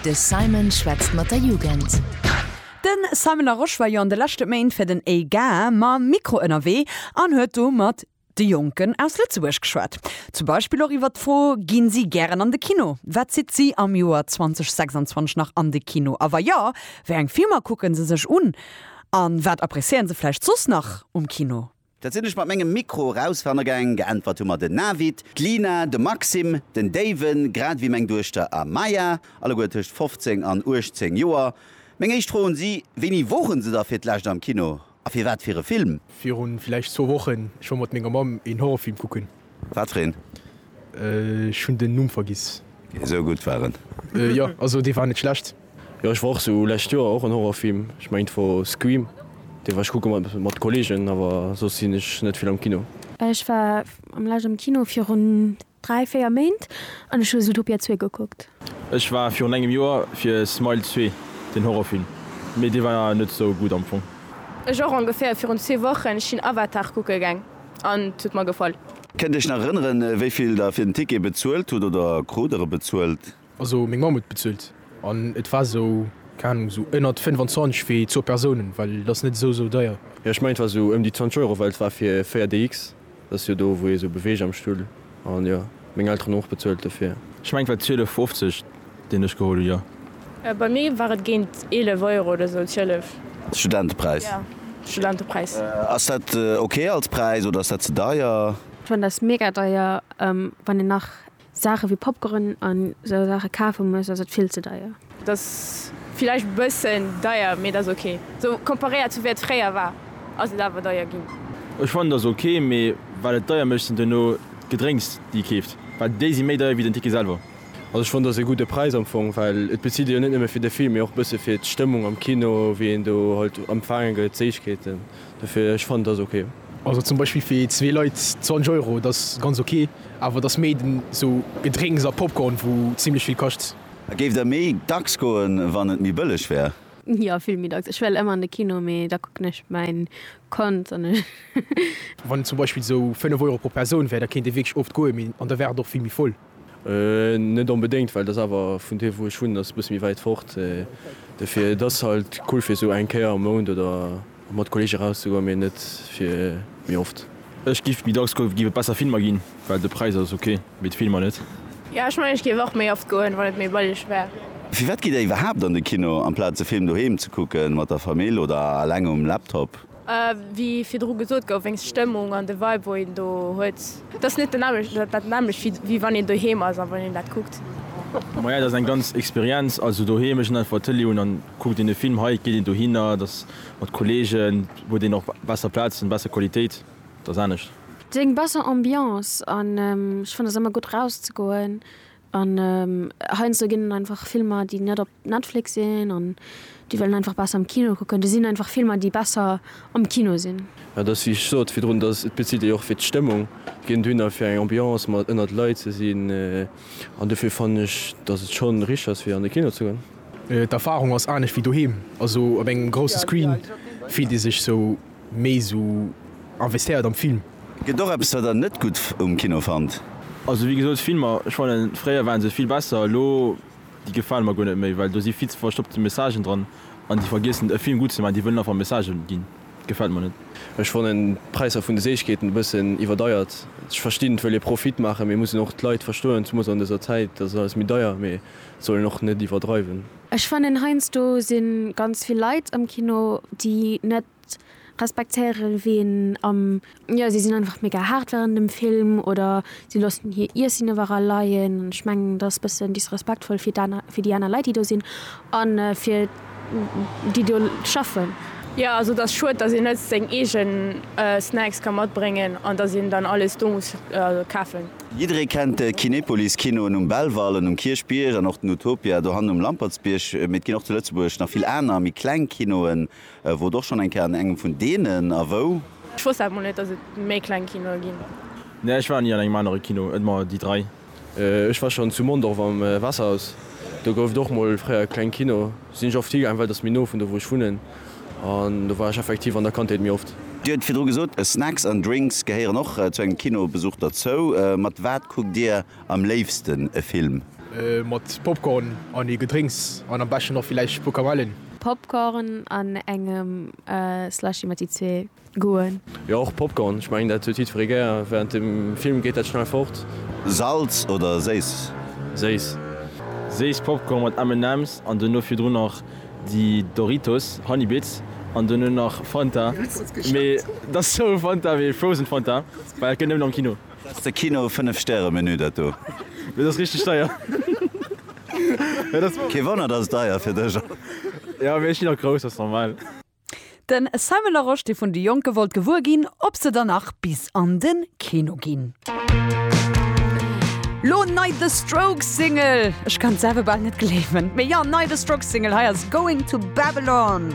De Simon schwätzt mat der Jugend. De Simon Larosche war jo an de leschte Méint fir den EGAR mam Mikro ënnerwee an huet do mat de Jonken aus Lëtzebuerg geschwat. Zum Beispill och iwwer d'Fro, Gi si gären an de Kino? Wat zitt si am Joer 2026 nach an de Kino? A wa jo, wéi eng Filmer kucke se sech un? A wat appréciéiere se vläicht soss nach um Kino? Dat sinn ech mat mengem Mikro eraus ranne gaang. Geäntwert hu mer den Navid, d'Lina, de Maxim, den Daven, grad ewéi meng Duechter Amaya, alleguer tëscht 15 an 18 Joer. Meng éischt Fro un si, Wéini woren se da fir d'lescht am Kino a fir wat fir e Film? Virun villäicht zwou Wochen. Ech war mat menger Mamm een Horrorfilm kucken. Wat fir een? Ech hunn den Numm vergiss. Esou gutt war en. Jo, also dee war net schlecht. Jo ech war och sou lescht Joer och en Horrorfilm, ech mengen et wor Scream, dee war ech kucke mat mat Kollegen, awer soss sinn ech net vill am Kino. Ech war am lescht am Kino virun 3, 4 Méint an ech hu Zootopia 2 gekuckt. Ech war virun engem Joer fir Smile 2 den Horrorfilm, mee dee war net sou gutt am Fong. Ech och ongeféier virun zwee Wochen, ech sinn Avatar kucke gaang. An et huet mer gefall. Kënnt Dir Iech nach erënneren, wéi vill Der fir den Ticket bezuelt hutt oder krut Der e bezuelt? Also meng Mamm huet bezuelt an et war esou, keng Ahnung, esou ënnert 25 fir zwou Persounen, well et ass net esou esou deier. Jo, ech mengen et war esou ëm déi 20 Euro, well et war fir 4DX, dat ass jo do wou ee sou beweegt am Stull. An jo, meng Elteren hunn och bezuelt dofir. Ech mengen et war 12,50 deen ech geholl hunn, jo. Bei mir war et géint 11 Euro oder sou d'Hëllef. Studentepräis. Jo, Studentepräis. Ass dat ok als Präis oder ass dat ze deier? Ech fannen dat mega deier. Wann een nach Saache wéi Popcorn an sou Saache kafe muss, ass et vill ze deier. Et ass villäicht bëssen deier, mee et ass ok. Sou komparéiert zu wéi et fréier war, ass et awer deier ginn. Ech fannen et ass ok, mee wat et deier mécht sinn duerno d'Gedrénks déi ee keeft, well déi si méi deier wéi den Ticket selwer. Also ech fannen et ass ee gudde Präis am Fong, well et bezilt ee jo net nëmme fir de Film, mee och bësse fir d'Stëmmung am Kino, wéi een do halt empfaange gëtt, d'Séichkeeten. Dofir ech fannen et ass ok. Also zum Beispill fir zwee Leit 20 Euro, et ass ganz ok, awer et ass méi den sou Gedrénks a Popcorn wou zimmlech vill kascht. A géift Der méi dacks goen, wann et méi bëlleg wär? Jo, vill méi dacks. Ech well ëmmer an de Kino, mee da kucken ech mäin Kand an ech. Wann et zum Beispill esou 5 Euro pro Persoun wär, da kéint ee wierklech oft goen, mee an da wär et och vill méi voll. Net onbedéngt, well et ass awer vun do wou ech wunnen, ass e bësse méi wäit fort. Dofir, et ass halt cool fir esou eng Kéier am Mount oder Fir mat Kolleege eraus ze goen, mee net fir méi oft. Ech giff méi dacks goen, giff et besser Filmer ginn, well de Präis ass ok, mee d'Filmer net. Jo ech mengen ech giff och méi oft goen wann et méi bëlleg wär. Firwat gitt der iwwerhaapt an de Kino amplaz de Film doheem ze kucken mat der Famill oder alleng um Laptop? Wéi virdru gesot gouf, wéinst Stëmmung an de Vibe wou een do huet. Dat ass net den nämmlecht, dat dat nämmlecht wéi wéi wann een doheem ass a wann een dat kuckt. Maja dat ass eng ganz Experienz, also doheem ech hunn einfach Tëlee un an kuckt een e Film, hei geet een dohinner, dat ass mat Kollegen, huet een och besser Plazen, besser Qualitéit, dat ass anescht. Et ass eng besser Ambiance an ech fannen ass ëmmer gutt rauszegoen an heiansdo ginn et einfach Filmer déi net op Netflix sinn an déi wëllen einfach besser am Kino kucken. Do sinn einfach Filmer, déi besser am Kino sinn. Et ass, wéi ech sot virdrun, dass et bezitt ee jo och fir d'Stëmmung, ginn dohinner fir eng Ambiance, mat ënnert Leit ze sinn. An dofir fannen ech, dass et schonn richteg ass, fir an de Kino ze goen. D'Erfarung ass anescht wéi doheem. Also op engem grousse Screen fillt ee sech sou méi esou investéiert am Film. Gëtt och eppes, wat der net gutt um Kino fannt? Also wéi gesot, Filmer, ech fannen, fréier waren se vill besser. Elo Déi gefalen mer guer net méi, well do si vill ze verstoppte Messagen dran an déi vergiessen e Film gutt ze maachen, déi wëllen einfach Message ginn. Gefält mer net. Ech fannen d'Präisser vun de Séichkeeten e bëssen iwwerdeiert. Ech verstinn, d'wëll ee Profit maachen, mee mussen och d'Leit verstoen, zumools an dëser Zäit, dass et alles méi deier, mee sollen och net iwwerdreiwen. Ech fannen heiansdo sinn ganz vill Leit am Kino déi net respektéieren ween am. Jo si sinn einfach mega haart während dem Film oder si loossen hir Iessen iwwerall leien an ech mengen dat ass bëssen disrespektvoll fir d'aner fir déi aner Leit déi do sinn an fir déi do schaffen. Jo also et ass schued dass een net seng eegen Snacks ka matbréngen an dass een dann alles do muss kafen. Jidderee kennt de Kinepolis Kinoen um Belval an um Kierchbierg an och den Utopia dohannen um Lampertsbierg, mee et ginn och zu Lëtzebuerg nach vill aner méi kleng Kinoen Wor och schon eng Kéier an engem vun deenen. A wou? Ech wosst dat mol net dass et méi kleng Kinoe ginn. Nee ech war ni an engem anere Kino et mer déi 3. Ech war schon zu Mondorf am Wasserhaus, do gouf et och mol fréier e kleng Kino, sinn ech oft higaang well et ass méi no vun do wou ech wunnen an do war ech effektiv an der Kandheet méi oft. Dir huet virdru gesot Snacks an Drinks gehéieren och zu engem Kinobesuch derzou, mat wat kuckt Dir Am léifsten e Film. Mat Popcorn an ee Gedrénks an am beschten och villäicht e puer Kamellen. Popcorn an engem Slushy mat déi zwee Goûten. Jo och Popcorn, ech mengen dat huet jiddferee gär. Während dem Film geet dat schnell fort. Salz oder séiss? Séiss. Séiss Popcorn mat M&M's an dono virdrun nach déi Doritos Honey Bits an dono nach Fanta, mee dat ass sou Fanta wéi Frozen Fanta, well dat gëtt nëmmen am Kino. Dass de Kino 5 Stäre Menü dat do. Dat ass richteg deier. Kee Wonner dass et deier fir dech ass. Jo mee ech ginn och grouss, ass normal. Den Simon Larosche dee vun de Jonke wollt gewuer ginn ob se der nach bis an den Kino ginn. Lo nei The Strokes Single, ech kann selwer bal net gleewen mee jo nei The Strokes Single hei ass Going to Babylon.